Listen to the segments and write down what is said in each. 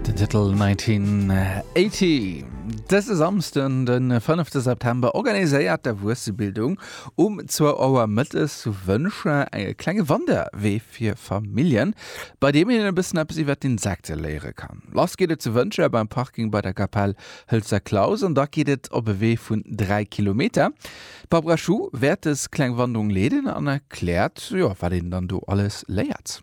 Den Titel 1980. Dëse Samsden, den 5. September, organiséiert d'Erwuessebildung um 2 Auer mëttes zu Wëncher e klenge Wanderwee fir Familljen, bei deem een e bëssen eppes iwwert d'Insekte léiere kann. Lass geet et zu Wëncher beim Parking bei der Kapell Hëlzer Klaus an da geet et op e Wee vun 3 Kilometer. D'Barbara Schuh wäert dës kleng Wanderung leeden an erkläert, jo, wat een dann do alles léiert.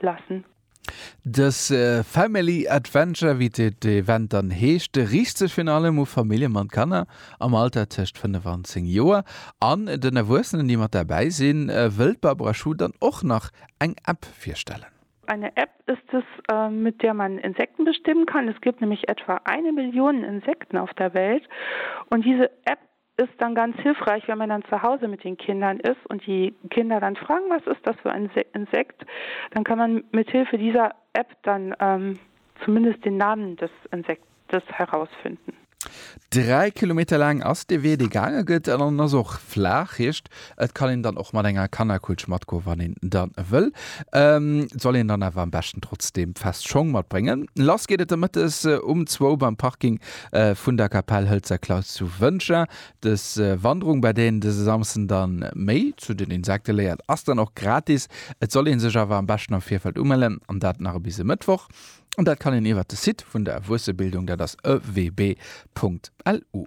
lassen. Dës Family Adventure, wéi d'Event dann heescht, riicht sech virun allem u Famillje mat Kanner am Alter tëscht 5 an 10 Joer an den Erwuessenen, déi mat derbäi sinn. Wëll d'Barbara Schuh dann och nach eng App virstellen? Eine App ist es, mit der man Insekten bestimmen kann. Es gibt nämlich etwa eine Million Insekten auf der Welt und diese App Ist dann ganz hilfreich wenn man dann zu Hause mit den Kindern ist und die Kinder dann fragen was ist das für ein Insekt, dann kann man mit Hilfe dieser App dann zumindest den Namen des Insektes herausfinden. Dräi Kilometer laang ass de Wee, dee gaange gëtt, an en ass och flaach, heescht Et kann een dann och mat enger Kannerkutsch matgoen, wann een dann wëll. Soll een dann awer am beschten trotzdem fest Schong matbréngen. Lass geet et de Mëttes um zwou beim Parking vun der Kapell Hëlzer Klaus zu Wëntger. Dës Wanderung, bei der een dëse Samsden dann méi zu den Insekte léiert, ass dann och gratis. Et soll een sech awer am beschten am Virfeld umellen an dat nach bis e Mëttwoch. An dat kann een iwwert de Site vun der Erwuessebildung, dat ass ewb. Lu.